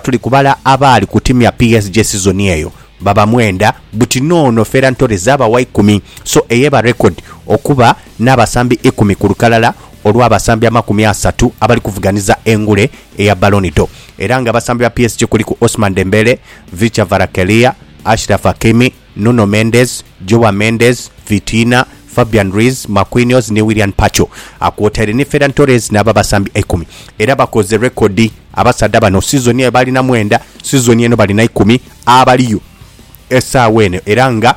Tuli kubala abaali ku timu ya PSG sizoni eyo baba mwenda buti n'ono Ferran Torres aba wa ikumi so eyeba record okuba n'abasambi ikumi ku lukalala olw'abasambi amakumi asatu abali kuvuganiza engule eya Ballon d'Or era nga abasambi ba PSG kuliku Ousmane Dembele, Vicha Varakelia, Achraf Hakimi, Nuno Mendes, Joao Mendes, Vitina, Fabian Ruiz, Marquinhos ni Willian Pacho kwotaire ni Ferran Torres nabo abasambi eikumi era bakoze rekodi abasaadha bano sizoni ere baalina mwenda sizoni eno balina ikumi abaliyo esaawa eno era nga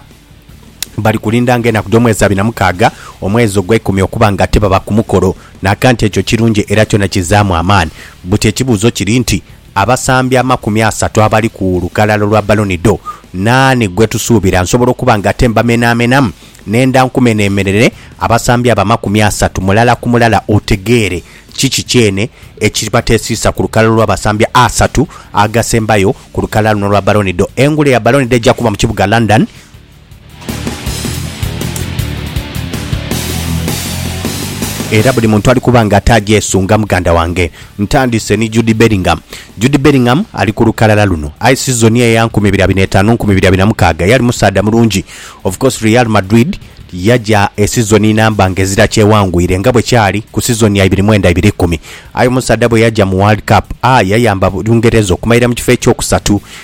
bali kulinda nga enaku dh'omwezi abiri na mukaaga omwezi ogweikumi okuba nga tibaba ku mukolo. Naakanti ekyo kirungi era kyona kizaamu amaani buti ekibuuzo kiri nti Abasambi amakumi asatu abali ku lukalala lwa Baloni Dho, naani gwe tusuubira? Nsobola okuba nga ate mbamenaamenamu nenda nkumenheemerere abasambi abo amakumi asatu mulala ku mulala otegeere kiki kyene ekibatesiisa ku lukalala olw'abasambi asatu agasembayo ku lukalala luno olwa Baloni Dho. Engule ya Baloni Dho eja kuba mu kibuga London Era buli muntu ali kuba nga ataagyesunga muganda wange. Ntandise ni Jude Bellingham. Jude Bellingham ali ku lukalala luno. Aye sizoni eya nkumi ibiri abiri n'etaanu nkumi ibiri abiri na mukaaga yali musaadha mulungi. Of course Real Madrid yaja esizoni namba ng'ezira kyewangwire nga bwe kyali ku sizoni ya ibiri mwenda ibiri ikumi. Aye omusaadha bwe yaja mu World Cup, a yayamba Bungereza okumalira mu kifo ekyokusatu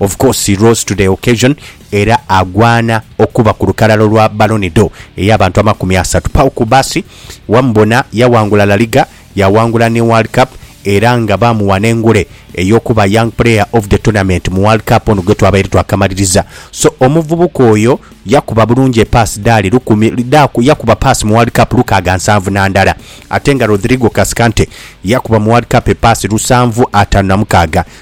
Of course he rose to the occasion era agwana okuba ku lukalala lwa Ballon d'Or ey'abantu amakumi asatu. Pau Cubarsí wamubona yawangula La Liga, yawangula ni World Cup era nga baamuwa n'engule ey'okuba Young Player of the Tournament mu World Cup ono gwetwabaire twakamaliriza. So omuvubuka oyo yakuba bulungi epaasi dhaali lukumi dha yakuba paasi mu World Cup lukaaga nsanvu na ndala ate nga Rodrigo Cascante yakuba mu World Cup epaasi lusanvu ataanu na mukaaga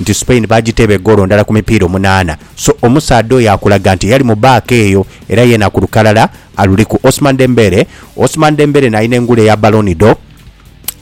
nti Spain baagiteeba egoolo ndala ku mipiira omunaana so omusaadha oyo akulaga nti yali mu baaka eyo era yeena ku lukalala aluliku. Ousmane Dembele Ousmane Dembele n'alina engule ya Ballon d'Or,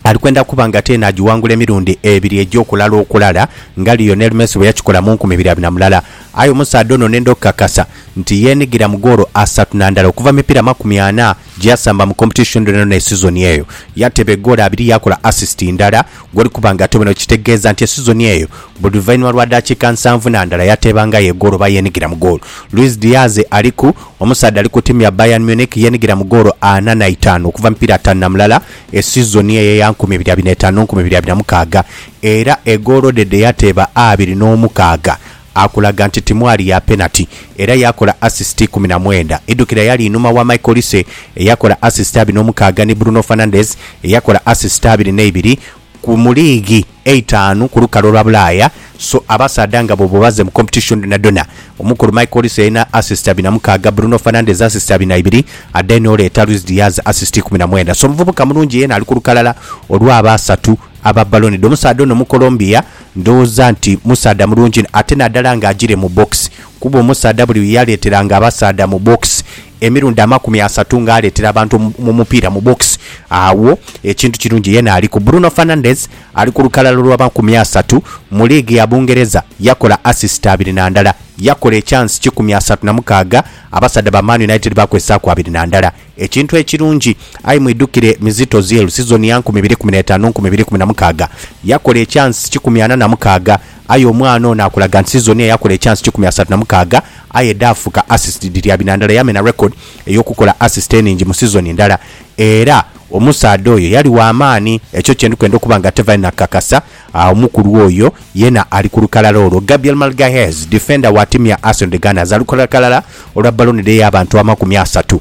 ali kwenda kuba nga ate n'agiwangula emirundi ebiri egy'okulala okulala nga Lionel Messi bwe yakikola mu nkumi ibiri abina mulala. Aye omusaadha ono nenda okukakasa nti yeenigira mu goolo asatu na ndala okuva mu mipiira amakumi ana. Gyeyasamba mu competition dhonadhona esizoni eyo, yateeba egoolo abiri yaakola assist ndala gwoli kuba nga ate bino kitegeeza nti esizoni eyo buli luvainhuma lwa daakiika nsanvu na ndala yateebangayo egoolo oba yeenigira mu goolo. Luis Diaz ali ku Omusaadha ali ku ttiimu ya Bayern Munich yeenigira mu goolo ana na itaanu okuva mu mipiira ataanu na mulala esizoni eyo eya nkumi ibiri abiri na etaanu nkumi ibiri abiri na mukaaga era egoolo dhe dhe yateeba abiri n'omukaaga akulaga nti timwali ya penati era yaakola asisiti ikumi na mwenda. Idukira yali inhuma wa Michael Olise eyakola asisiti abiri n'omukaaga ni Bruno Fernandes eyakola asisiti abiri n'eibiri ku mu liigi eitaanu ku lukalu olwa Bulaaya. So abasaadha nga bwoba obaze mu kompetishoni dhonadhona, omukulu Michael Olise yalina asisiti abiri na mukaaga, Bruno Fernandes asisiti abiri na ibiri ate n'oleeta Luis Diaz asisiti ikumi na mwenda. So muvubuka mulungi yeena ali ku lukalala olw'abasatu aba Ballon d'Or. Omusaadha ono Mucolombia. Ndhoghoza nti musaadha mulungi inho ate nadala nga ajire mu box kuba omusaadha buli yaleteranga abasaadha mu box emirundi amakumi asatu nga aletera abantu omupiira mu box agho ekintu kirungi yena aliku. Bruno Fernandes ali ku lukalala olwa makumi asatu mu liigi ya Bungereza yakola assist abiri na ndala, yakola ekyansi kikumi asatu na mukaaga abasaadha ba Man United bakozesaaku abiri na ndala. Ekintu ekirungi, aye mwidhukire mizito zielu sizoni ya nkumi ibiri kumi n'etaanu nkumi ibiri kumi na mukaaga yakola ekyansi kikumi ana na mukaaga, aye omwana ono akulaga nti sizoni eyo yakola ekyansi kikumi asatu na mukaaga aye dhaafuka assist dhiri abina ndala yamena record ey'okukola assist enhingi mu sizoni ndala era omusaadha oyo yali wa maani ekyo kye ndi kwenda okuba nga Tevine akakasa omukulu oyo yena ali ku lukalala olwo. Gabriel Magalhaes, defender wa tiimu ya Arsenal The Gunners ali ku lukalala olwa Ballon d'Or y'abantu amakumi asatu